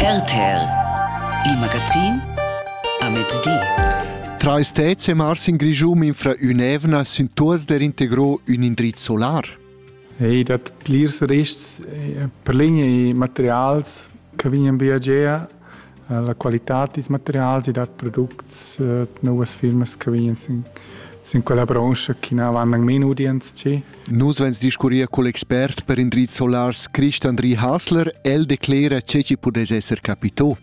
RTL Il magazin a mezdi. Trais tets e mars in Grischum infra ün'evna sün tuors der integro ün indriz solar. Ei dat plirs rests per ligne e materials che vegnan viagier La qualitad dils materials e dat products novas firmas che vegnan sin sin quella branscha che na van anc main udients tgi. Nus vegns discurrir cul expert per indrizs solars Christian Andri Hasler. El declera che ci pudess esser capito.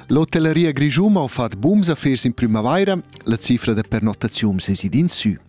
L'hotelleria Grischuma ha fatg bums affers in primavaira. La cifra da pernottaziun sesidin sü.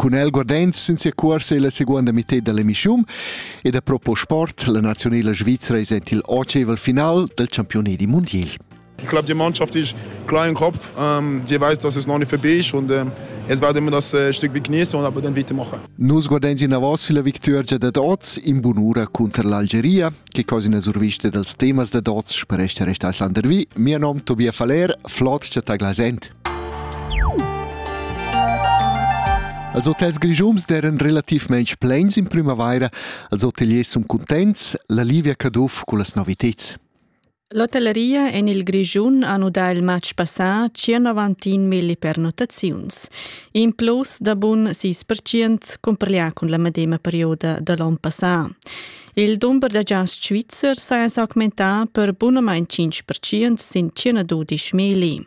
Cun el guardains sin sia cuorsa illa seguonda mitted da l'emischun ed ha propo sport la nazionela svizra es ent il otscheivel final del champiunedi mundiel. Die Clubmannschaft ist klar im Kopf. Ähm, die weiß, dass es noch nicht vorbei ist und ähm, jetzt werden wir das äh, Stück genießen und aber dann weitermachen. Nus guardains in avos la victuergia dad oz in bunura cunter l'Algeria che cosa ina survista dals temas da dots spereste restais landervi. Mio nom Tobias Faller, flot ta glasent. Els hotels grigiums deran relativmain plens in primavaira, als hoteliers sun cuntents, la Livia Caduff cu las noviteds. L'hotelleria en il Grischun ha nudà il matg passà 191 milli pernottaziuns, in plus da bun 6 cumparlià cun la medema perioda da l'onn passà. Il dumber da giasts svizzer saja s'augmentà per bunamain 5% sin 112 milli.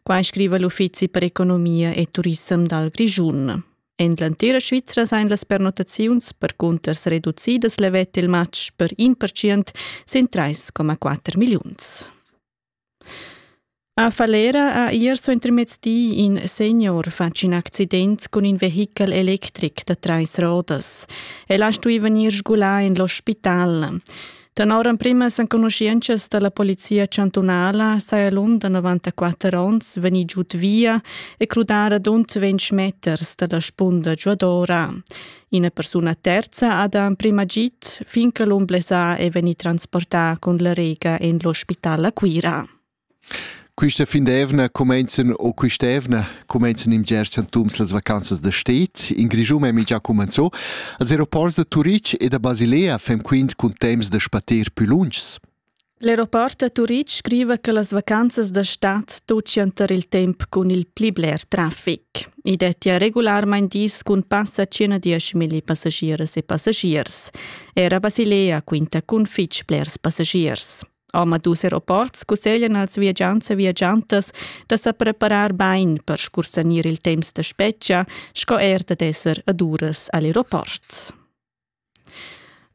Quai scriva l'Uffizi per economia e turissem dal Grischun. En l'entira Svizra sain las pernottaziuns percunters reducidas levet il match per in percient sin 3,4 milliuns. A Falera ha ier so intermezdi in senior fatg in accident cun in vehichel electric da trais rodas. El ha stui vegnir sgulà en l'ospital. Tenor emprimas enconuschientschas dalla polizia chantunala saja l'um da 94 onns vegni giud via e crudar adont 20 meters dalla spunda giuadora. Ina persuna terza ha da emprima git fin che l'um blesà è vegni transportà cun la rega en l'ospital a Cuira. Quista fin d'eivna cumenzan o quist'eivna cumenzan in bgers chantuns las vacanzas da sted. In Grischun ha mincha cumanzò. Als aeroports da Turitg e da Basilea fem quint cun temps da spater pü lunschs. L'aeroport da Turitg scriva che las vacanzas da stad tuccian tar il temp cun il pli bler trafic. I dettia regularmain dis cun passa circa 10.000 passagiers e passagiers. Era Basilea quinta cun fitg blers passagiers. Omadus aeroports cusseglian als viagiants e viagiantas da sa preparar bain per scursanir il temps da spetga sco er dad esser ad uras al aeroport.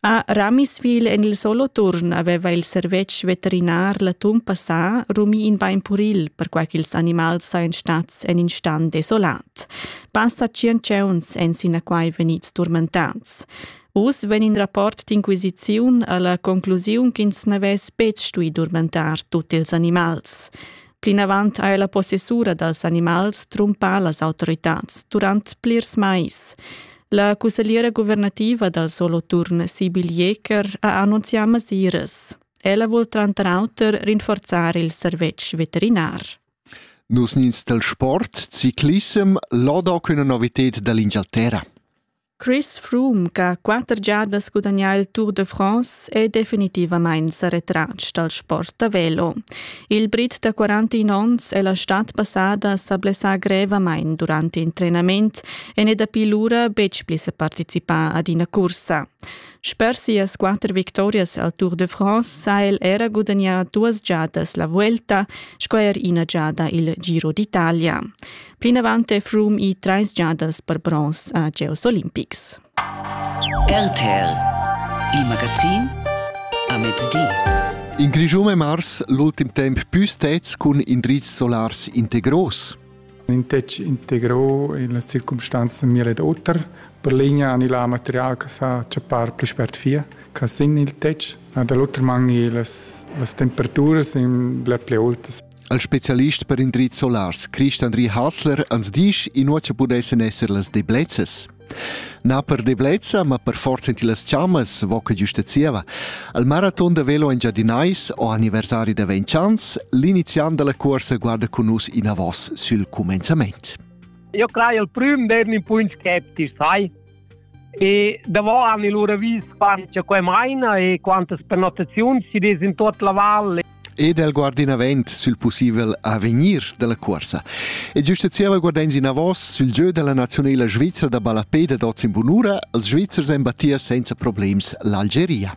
A Ramiswil en il Soloturn aveva il servetsch veterinar l'atun passà rumì in bain puril, perquai ch'ils animals sajan stads en in stan desolat. Passa tschient tgeuns èn sinaquai vegnids turmentads. Uss vegn in rapport d'inquisiziun alla conclusiun ch'ins n'avess betg stui durmentar tut ils animals. Plinavant ha la possessura dals animals trumpà las autoritads durant plirs mais. La cussegliera guvernativa dal Soloturn Sibyl Jeker ha annunzià masiras. Ella vul tranter auter rinforzar il servetsch veterinar. Nus nins del sport, ciclissem, lodo quina novited dall'Inghilterra. Chris Froome ch'ha quatter giadas gudagnà il Tour de France è definitivamain sa retratg dal sport da velo. Il Brit da 41 onns è la stad passada sa blessà grevamain durant il trenament e n'è dapi lura betg pli sa participà ad ina cursa. Sper sias quatter victorias al Tour de France ha el era gudagnà duas giadas la Vuelta sco er ina giada il Giro d'Italia. Plinavant è Froome i trais giadas per bronz a Geos Olimpics. RTL, il magazin a mezdi. In Grischun è mars l'ultim temp più stets cun indrizs solars integros. Intec integro in las circumstanzas mir ed oter. Per linea ani la material che sa chappar pli spert fia, che sin il tec, da l'oter man las, las temperaturas in ble pli oltas. al specialist per indrizs solars Christian Ri Hasler ans disch inuocha pudessan esser las deblezzas. Na per deblezza, ma per forza in las chammas, vo che giusta zieva. Al maraton da velo in Giadinais o anniversari da Ventchans, l'iniziant della corsa guarda con us in avos sul commenzament. Io crei il prüm d'ern in punt skeptisch, sai? E davo han i lura vis quant cha quai maina e quantas pernottaziuns chi'd es in tuot la val e del guardinavent sül pussibel avegnir della cuorsa. E giusta zieva guardains inavos sül giö della nazionela svizra da ballapè dad oz in bunura, els Svizzers embattia senza problems l'Algeria.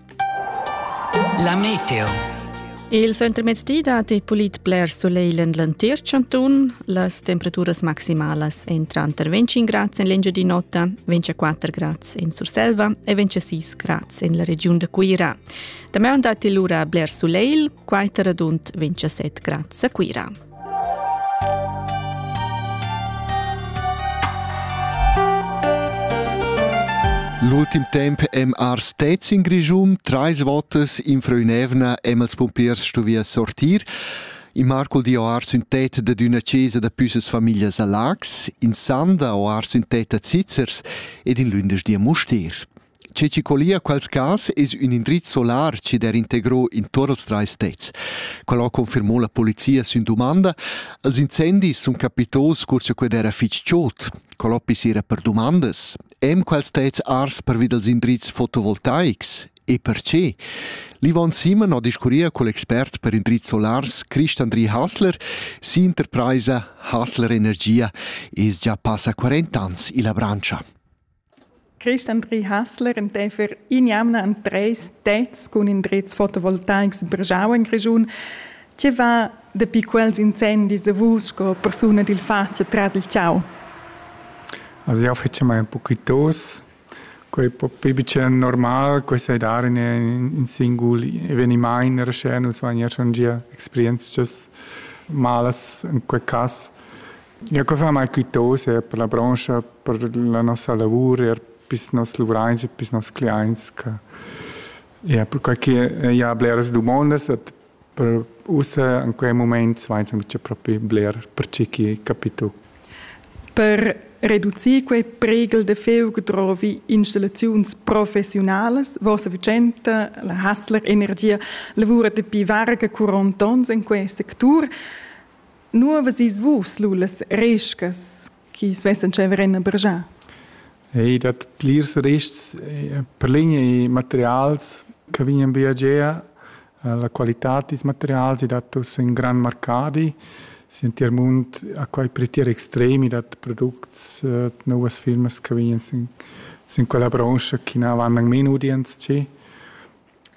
La meteo. Il centremezdi dat il pulit bler soleil en l'entir chantun. Las temperaturas maximalas èn tranter 25 grads en l'Engiadin'Ota, 24 grads en Surselva e 26 grads en la regiun da Cuira. Damaun dat il lura bler soleil, quai tar radund 27 grads a Cuira. L'ultim temp em ars stets in Grischun, trais votas in Freuinevna em als pumpiers stuvia sortir. In Marcol di o ars ün tet dad üna chesa da püssas familias a Lax, in Sanda o ars ün tet da Zizzers ed in lündesch di a Mustir. Che chi collia quels cas es ün indriz solar chi d'he integro in tuot els trais tets. Quel ho confirmò la polizia sün dumanda. Els incendis sun capitos cur cha quel era fich chod. Col hoppi s'ira per dumandas. Em quels tets ars pervi dals indrizs fotovoltaics? E perche? L'Yvonne Simon ho discurria cul expert per indrizs solars Christandri Hasler. S'interpraisa Hasler Energia es già passa 40 ans illa branscha. Christian Brihassler enteifer in jamna en treis tets cun indrezs fotovoltaics brgau en Grischun. Tge va dapi quels incendis a vus sco persuna dil fatg tras il tgau? Also io fece mai un poquitos, quei propi bicen normal, quei sai dar in, in singul eveniment in rescena, so ania schon gia experientschas malas in quei cass. Ja, co far mai quitose per la brancha, per la nossa lavur, er pis nos luvrains e pis nos cliaints, che ja, perquai che ja bleras dumondas et per ussa in quei moment vains auncha propi bler per chi chi capito. Per reducir quei pregel de feug drovi installaziuns professionalas. Vossa Vicenta, la Hassler Energia, lavura dapi varga 40 ons in quei sectur. Nu avais vus lu las rescas chi svessan tscheiver en a bergiar? Ei dat plirs ristgs per lign e materials che vegnan via gia. La qualitad dils materials ei dat uss in gran marcadi. Si en tier mund ha quei per tier extremi dat products novas firmas che vegnan sin, sin quella branscha chi na van nang men udients tgi.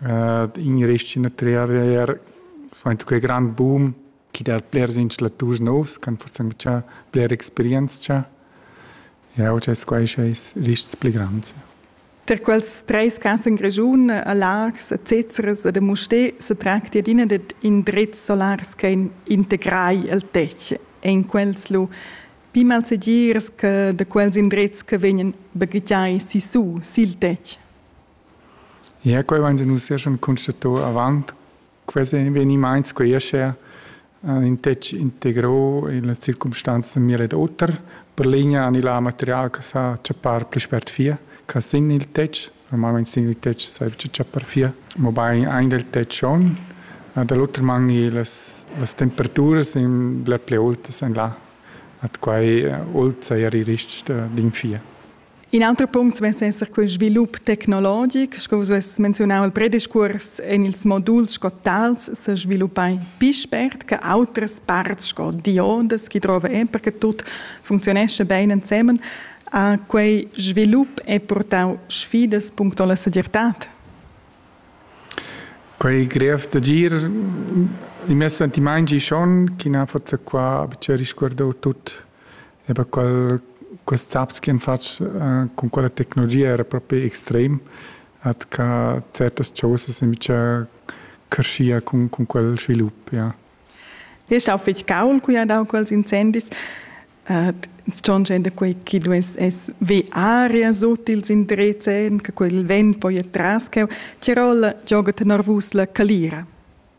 In ristg in a Trier er, quei grand boom chi dat blers instalaturs novs ch'han forsanzchà bler experientscha. Jau dess quai schais rists pli grands. Tar quels treis cas en Grischun, a Laax, a Zezeres ed a Mustér sa tracti adina dad indrezs solars che integrai il tetg. En quels lu pli malsegirs che da quels indrezs che vegnan baghegiai sissu sil tetg. Ja, quai vain nus ja schon constato avant Quels evenimaints quei aschia in tec integrau illa circumstanza mir ed oter. Per ligna han il material che sa chappar pli spert fia che sin il tetg. Normalmein sin il tetg saevgia chappar fia, mobein ein del tetg schon. Da l'oter man las las temperaturas ein bler pli aultas en là. Ad quei ault sai er il rest d'in fia. In auter punct vess esser quel svilup tecnologic, sco vus vess menziunau il prediscurs en ils moduls sco tals se sviluppai pi spert che autres parts sco diodas chi drova e perché tut funzionesce bene ensemen, a quei svilup è portau sfidas puncto la segirtad? Quei grev d'agir i m'è sentimaint schon, chi na forza qua c'è risguardau tut e per qual quest saps che han fatg uh, con quella tecnologia era proprio extrem at ca certas chosas invece crescia con, con quel svilup ja. Ti hast auch fitg gaul qui ad quels incendis. Uh, schon da quei chi dues es ve arias utils in drezzen, che quel vent poi tras cheu, Tirola gioga tenor vus la calira.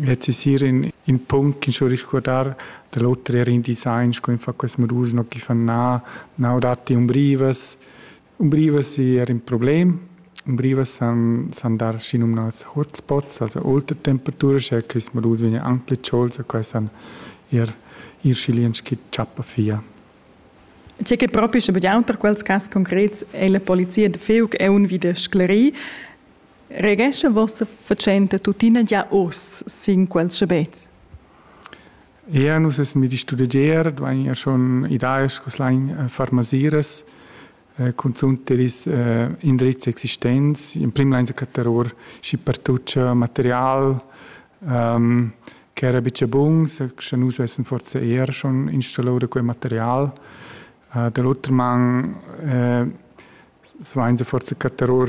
Lez es eir in ün punct chi sto risguardar da l'oter eir in design sco ün fa quels modus no chi fan na, na o datti umbrivas. Umbrivas es eir ün problem. Umbrivas san san dar schinumnats hotspots, also aultatemperatura, sche quist modus vegna anc plü tscholts e quai san eir ir schilients chi tschappa via. Tge che propi sche betg auter quels cas concrets è la polizia da Fiug è un vi da sclerir. Regescha vossa fatschenta tuttina gia oz sin quels schabets? Eir nus es medi studegier, dvain eir schon idaias scu slain farmasiras, cunzunt der is indrizs existents, in prim lainsa cattar our schi pertucha material ch'era bicha buns, scha nus vessan forsa eir schon installà da quel material. Da l'oter man svainsa forsa cattar our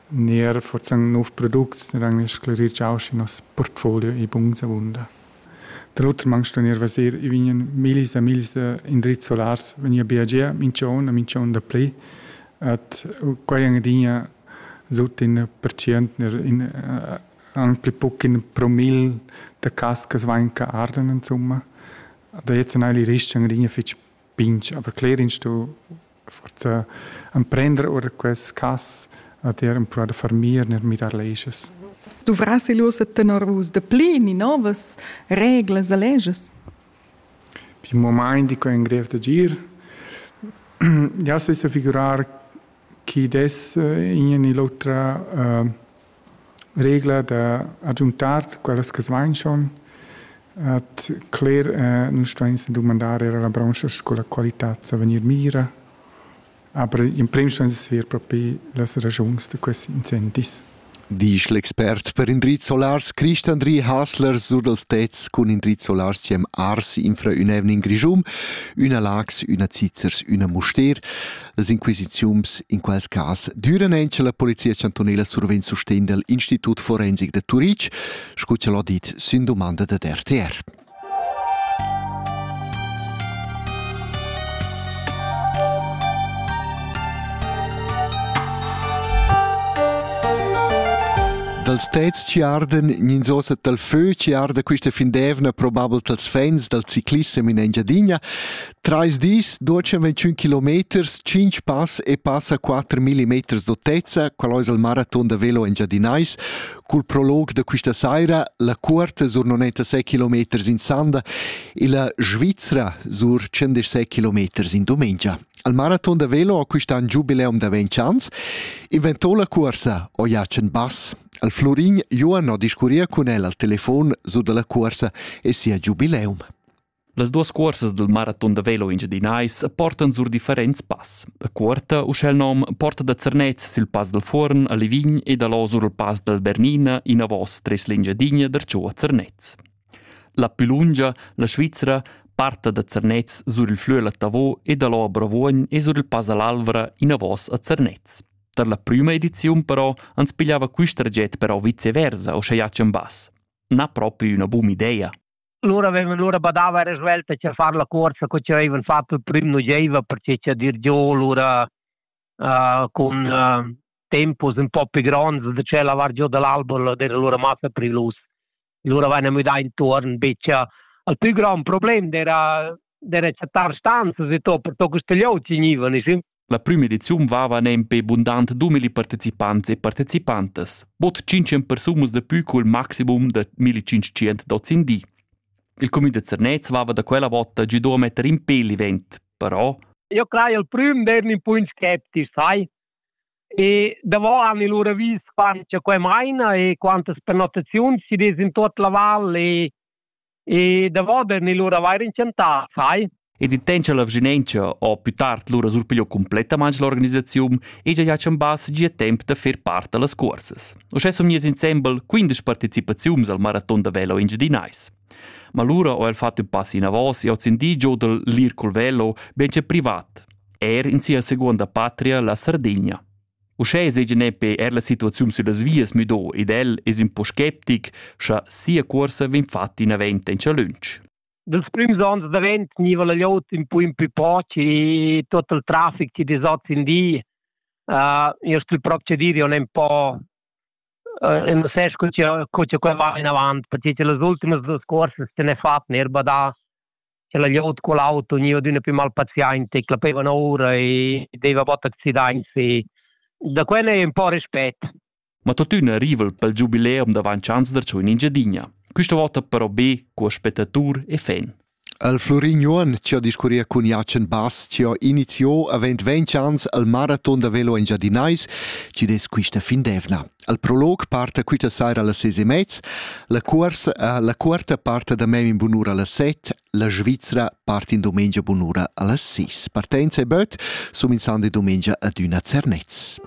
Nier forzan nov products eran sclerir giau schi nos portfolio e buns avunda. Da l'oter mang sto nier vasir, i vignan millis e millis indrizs solars vegnia bia gia minchon a minchon da pli, et quai ang adina sut in percient in ang pli buc in promil da cascas vain che arden insomma. Da jetzt gnai il rist ang adina fich pinch, aber cler in sto forza emprender ora quest cas a dir empruar da farmir ner midar leges. Duvras il ussa tenor vus de pli ni novas reglas e leges? Pi mo mai dico in grev de gir. Ja se sa figurar chi des eh, in e ni l'otra uh, regla da agiuntar quellas che svainchan at cler eh, nus stuain dumandar er alla branscha sco la qualità sa vegnir mira aber in prim ston sver propi las ragiuns da questi incendis Disch l'expert per indrizs solars Christandri Hasler sur dals tets cun indrizs solars siem Ars infra ün evnin Grischum, üna Lax, üna Zizzers, üna Muster. Las inquisiziuns in quals cas düran ein la Polizia chantunela survegn sustegn dal Institut Forensik de Turitg, scu ch'el ha dit sin domanda da RTR. dals tets ci arden ninzosa tal fö ci arda quista findevna probabel tals fans dal ciclissem in Engiadina Trais dis, 221 kilometers, 5 pass e passa 4 millimeters d'autezza, qual ais il maraton da velo engiadinais. Cul prolog da quista saira la cuorta sur 96 kilometers in Sanda e la Svizzera sur 116 kilometers in dumengia. Al maraton da velo ha quist'an giubileum da 20 ans inventò la cuorsa Oiachen Bass. Al Florin Joan ho discurria cun el al telefon su dalla cuorsa e sia giubileum. Las duas cuorsas dal maraton da velo engiadinais portan sur differents pass. A Cuorta, uschè il nom, porta da Zernez sil Pass dal Fuorn a Livign e da là sur il Pass dal Bernina inavos tres l'Engiadinha darcheu a Zernez. La più lunga, la Svizra, parta da Zernez sur il flüel a Tavò e da là a Bravuogn e sur il Pass all'Alvra inavos a Zernez. Tar la prüma ediziun però ans pigliava quist traget però viceversa, o sche jacem bas. Na propi üna bum idea. Lura vevan lura badava era svelta che far la cuorsa co che avevan fatto il prim nu gieva perché che dir giò lura uh, cun uh, tempos un po' più gronds da ce lavar giò dall'album era lura massa prilus. Lura venne müdà intorno becca al più grande problema era delle città stanze e to per to questo gli oggi nivan sì La prima ediziun vava nempe bundant 2000 participants e participantas, bod 500 persunas da più cul maximum da 1500 dots in di. Il comün da Zernez vava da quella vota gido a metter in pel event, però io crei il prim d'ern un po' skeptisch, sai? E davò han i lura vis quant che quai maina e quantas pernottaziuns si des in tot la val e E davoder ni lur avair intentà, sai? Ed in temps la vischinanza o più tard lura surpigliò completamente l'organisazione e già ha chambass gia temp da fer part da las cursas. Uschè sun mies insembel 15 partecipaziuns al maraton da velo engiadinais. Ma lura ho el fatto ün pass inavos e ho sentì giò dal Lircol Velo ben che privat, er in sia seconda patria, la Sardegna. Uschè seigi nepe er la situaziun süllas vias müdo ed el es ün po sceptic, scha sia cuorsa vegn fatta inavent en lunsch. Dels prüms ans davent gniva la gliot ün po in pü poch e tot il trafic chi desats in di uh, io stu procedire on un po uh, e non sai co co qua va in avant perché che las ultimas due scorse se ne fatto erba da che la glieud col auto gniva adüna plü mal paziainta e clapevan oura e deva bot accidaints e da quella è un po' respet. Ma tuottüna rival pel giubileum davant chans da tschun in Giadigna. Quista vota però be cu spettatur e fan. Al Florin Juon ci ha discurria cun Jacen Bass ci ha iniziò avent 20 ans al maraton da velo engiadinais ci des quista fin d'evna. Al prolog parta quista saira las ses e mez, la cuorsa, eh, la cuorta parta da mem in bunura las set, la Svizra part in domenica bunura a las 6. Partenza e böt, sum in sande domenica ad üna Zernez.